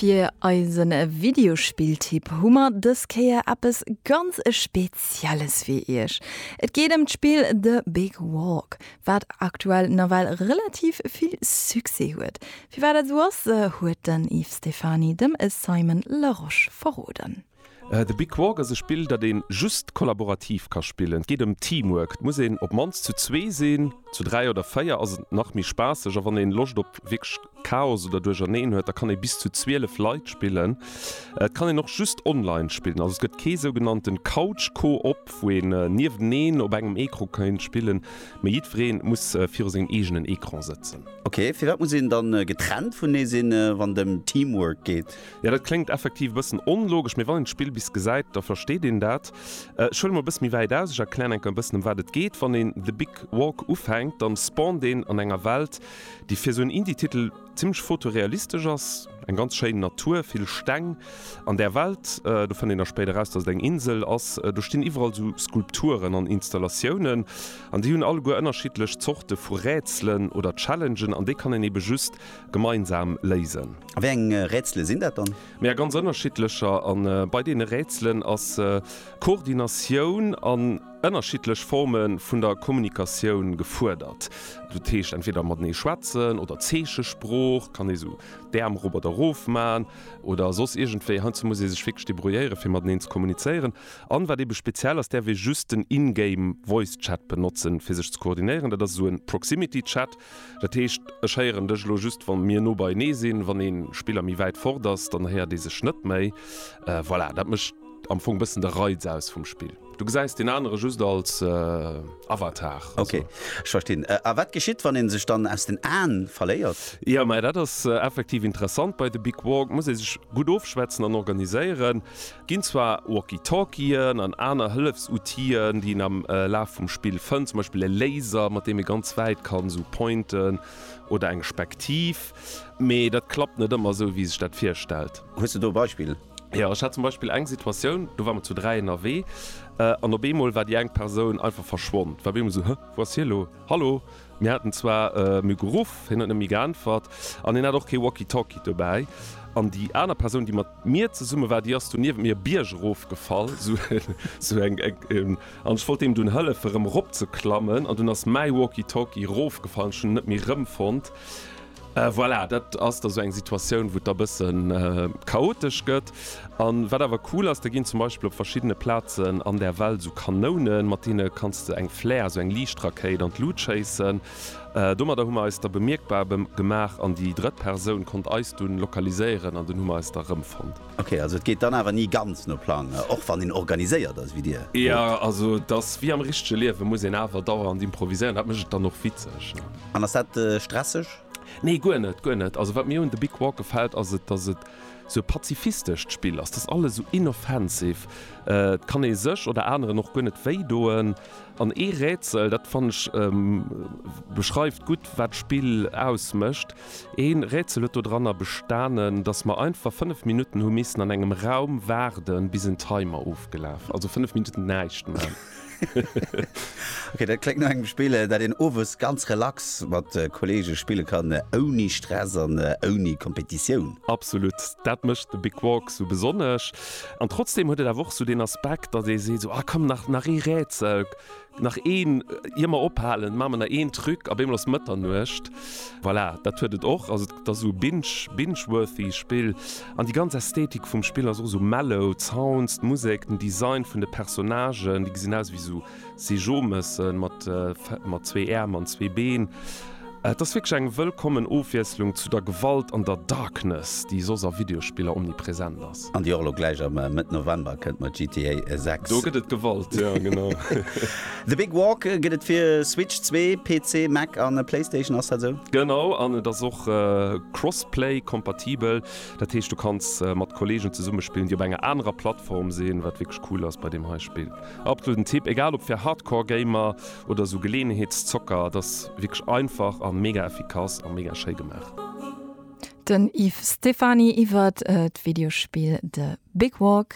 Fir eise Videospill-Tipp hu mer dës Kéier eppes ganz e Spezielles fir iech. Et geet ëm d'Spill The Big Walk, wat aktuell nawell relativ vill Succès huet. Firwat dat esou ass, huet den Yves Stephany dem Simon Larosche verroden. The Big Quark ass e Spill, dat een just kollaborativ ka spillen. Et geet ëm Teamwork. Et muss een op d'mannst zu zwee sinn. Zu dräi oder véier ass et nach méi spaasseg. A wann een Loscht op wierklech Chaos oder Duercherneen huet, da kann ee bis zu 12 Leit spillen. Et kann een och just online spillen. Also et gëtt kee sougenannten Couch Co-op, wou een nieweneen op engem Ecran kéint spillen, mee jiddwereen muss viru sengem eegenen Ecran sëtzen. Ok, firwat muss een dann getrennt vunee sinn, wann et ëm Teamwork geet? Jo dat kléngt effektiv e bëssen onlogesch, mee wann een d'Spill bis gesäit, da versteet een dat. Ech huele mol e bësse méi wäit aus, ech erklären enker e bëssen ëm wat et geet. Wann een The Big Walk ufänkt, dann spawnt een an enger Welt, déi fir esou en Indie-Titel zimmlech fotorealistesch ass. Eng ganz schéin Natur, vill Steng an där Welt. Do fënnt een da spéider raus, dass et eng Insel ass. Do stinn iwwerall esou Skulpturen an Installatiounen an déi hunn alleguer ënnerschiddlech Zorte vu Rätselen oder Challengen an déi kann een eebe just gemeinsam léisen. A wéi eng Rätsele sinn dat dann? Mee a ganz ënnerschiddlecher. A bei deene Rätselen ass Koordinatioun an ënnerschiddlech Forme vun der Kommunikatioun gefuerdert. Dat heescht entweder matenee schwätzen oder Zeechesprooch, kann ee sou d'Äerm erop oder erof maachen oder soss iergendwéi. Heiansdo muss ee sech wierklech debrouilléieren, fir mateneen ze kommunizéieren. An wat eebe speziell ass, däerf ee just den in-game voice chat benotzen, fir sech ze koordinéieren. Dat ass esou e Proximity Chat. Dat heescht, ech héieren dech elo just, wa mir no beienee sinn. Wann ee Spiller méi wäit fort ass, dann héiert ee sech net méi. Voilà, dat mécht am Fong bëssen de Reiz aus vum Spill. Du gesäis deen anere just als Avatar. Ok, ech verstinn. A wat geschitt, wann ee sech dann aus den Aen verléiert? Jo, mä dat ass effektiv interessant. Bei de Big Walk muss ee sech gutt ofschwätzen an organiséieren. Ginn zwar Walkie-Talkien an aner Hëllefsoutien, déi een am Laf vum Spill fënnt, zum Beispill e Laser, mat deem ee ganz wäit kann esou pointen, oder eng Spektiv, mee dat klappt net ëmmer esou, wéi ee sech dat virstellt. Hues de do e Beispill? Jo, ech hat zum Beispill eng Situatioun, do ware mer zu dräi ënnerwee, an op eemol war déi eng Persoun einfach verschwonn. War op eemol esou, Huh, wou ass hie elo? Hallo? Mir haten zwar em e geruff, hien huet net méi geäntwert an hien hat och kee Walkie-Talkie dobäi. An déi aner Persoun, déi mat mir zesumme war, déi ass do niewent mir e Bierg erofgefall, esou eng, an ech wollt deem dunn hëllefen, erëm eropzeklammen, an dunn ass mäi Walkie-Talkie erofgefall an ech hunn en net méi erëmfonnt. Voilà, dat ass da sou eng Situatioun, wou et da bësse chaotesch gëtt. An wat awer cool ass, da ginn zum Beispill op verschiddene Plazen an der Welt sou Kanounen, mat deene kanns de eng Flare, sou eng Liichtrakéit, an d'Lut schéissen. Domadder hu mer eis da bemierkbar gemaach an déi drëtt Persoun konnt eis dunn lokaliséieren an dunn hu mer eis da erëmfonnt. Ok, also et geet dann awer ni ganz no Plang, och wann een organiséiert ass wéi Dir? Jo, also et ass wéi am richtege Liewen, muss een awer dauernd improviséieren, dat mécht et dann och witzeg. An ass dat stresseg? Nee, guer net, guer net. Also wat mir un The Big Walk gefält, ass et, dass et sou e pazifistescht Spill ass, et ass alles sou inoffensive, et kann ee sech oder aneren och guer net wéidoen. An ee Rätsel, dat fannen ech beschreift gutt wat d'Spill ausmécht, Een Rätsel huet dodranner bestanen, dass mer einfach 5 Minutten hu missen an engem Raum waarden bis en Timer ofgelaf, also 5 Minutten näischt man. Ok, dat kléngt no engem Spill, dat een owes ganz relax mat Kollege spille kann, ouni Stress an ouni Kompetitioun. Absolut, dat mécht The Big Walk sou besonnesch. An trotzdem huet et awer och sou deen Aspekt, dass ee seet sou, ah komm nach ee Rätsel, Nach een, ier mer ophalen, maache mer nach een Truc, op eemol ass Mëtternuecht. Voilà, dat huet et och. Also et ass esou binge, binge-worthy Spill. An déi ganz Ästhetik vum Spill ass och esou mellow, d'Sounds, d'Musek, den Design vun de Personnagen, déi gesinn aus ewéi esou Seejomessen mat, mat zwee Äerm an zwee Been. Et ass wierklech eng wëllkommen Ofwiesslung zu der Gewalt an der Darkness, déi soss a Videospiller omnipresent ass. An déi och elo gläich am Mëtt November kënnt mat GTA 6. Do gëtt et Gewalt, jo genau. The Big Walk gëtt et fir Switch 2, PC, Mac a Playstation, ass dat esou? Genau, an et ass och crossplay kompatibel. Dat heescht du kanns mat Kollegen zesumme spillen, déi op enger anerer Plattform sinn, wat wierklech cool ass bei deem hei Spill. Absoluten Tipp, egal ob fir Hardcore Gamer, oder esou Geleeënheetszocker, et ass wierklech einfach a mega effikass a mega schéi gemaach. Den Yves Stephany iwwert d'Videospill The Big Walk.